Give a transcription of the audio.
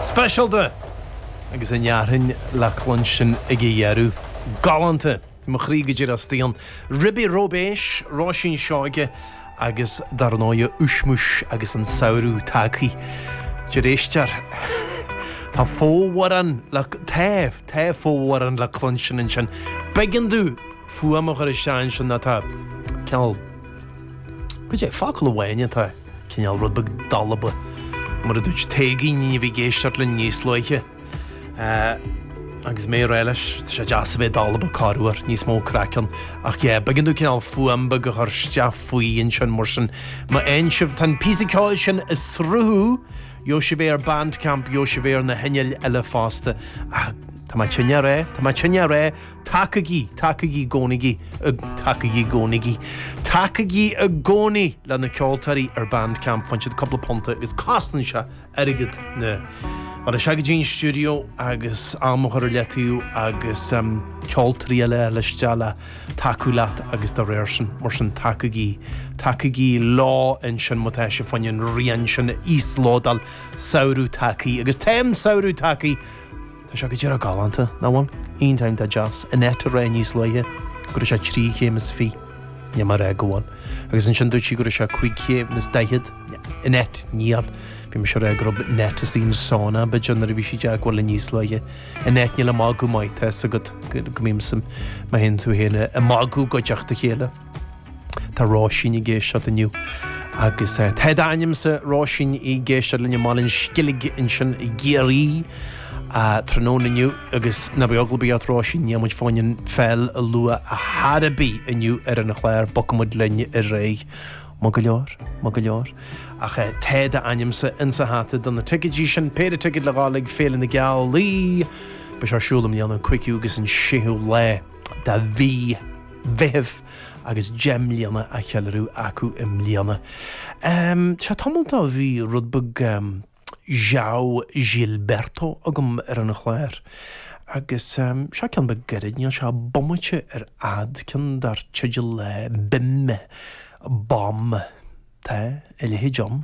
Speisialta! Agus an fhearthainn le cluinstin ag a dheireadh. Galánta! Mo chroí go díreach stróicthe. Ribí róibéis, Róisín Seoige agus dar ndóigh Ushmush agus an samhradh tagthaithe. de réir Eistir. Tá fomhuireán le, tá, tá fomhuireán le cluinstin ansin. B'éigean dó. fuaim bheag ar an stáisiún sin atá cineál, goidé é, focal amháin atá cineál rud beag dalba, mar a dúirt Taygin a bhí ag éisteacht linn níos luaithe. Agus mé ag rá leis, tá sé deas a bheith dalba corruair, níos mó craic ann. Ach yeah, b'éigean dó cineál fuaim beag a chur isteach faoi ansin mar sin. Má fhaigheann sibh, tá an píosa ceoil sin ag sruthú, gheobhaidh sibh é ar Bandcamp, gheobhaidh sibh é ar na cainéil eile fosta. Ach tá mé tinn ar é, tá mé tinn ar é. Tacaigí, tacaigí, gcónaigí, tacaigí, gcónaigí, tacaigí i gcónaí le na ceoltóirí ar Bandcamp, faigheann siad cúpla punta agus cosnaíonn sé airgead ar ndóigh a ghabháil go dtí an stiúideo agus am a chur ar leataobh agus ceoltóirí eile a liostáil le tacú leat agus dá réir sin. Mar sin tacaigí, tacaigí leo ansin má tá sibh faoin rian sin a íoslódáil, Samhradh Tagthaí agus tá an samhradh tagthaí. Tá sé go díreach galánta, nach bhfuil? Iontach deas, tá Jeanette a rá níos luaithe go raibh sé trí chéim is fiche, níl mé a rá go bhfuil. Agus ansin dúirt sí go raibh sé cúig chéim is daichead, Jeanette, níl. Bhí mise a rá go raibh Jeanette insan sauna, b'fhéidir, nuair a bhí sí i dteagmháil linn níos luaithe, Jeanette, níl mé ach ag magadh, mar, tá 'fhios agat go mbímse, mé féin is tú féin ag magadh i gcuideachta a chéile. Tá Róisín ag éisteacht inniu. Agus tá d'ainmse, Róisín, ag éisteacht linn i mBaile an Sceilg ansin i gCiarraí tráthnóna inniu. Agus ná bíodh eagla ort, Róisín, níl muid fán pheil a lua ar chor ar bith inniu ar an chlár, bogfaidh muid linn ar aghaidh. Maith go leor, maith go leor. Ach tá d'ainmse insa hata do na ticéidí sin, péire ticéad le dhul chuig Féile na Gealaí. Beidh sé ar siúl i mbliana an 5ú agus an 6ú lá de mhí. Mheithimh agus deich mbliana á cheiliúradh acu i mbliana. Seo tamall ó bhí rud beag João Gilberto agam ar an chlár agus seo ceann beag gairid, níl sé bomaite ar fhad, ceann dar teideal Bim Bom, tá a leithéid ann.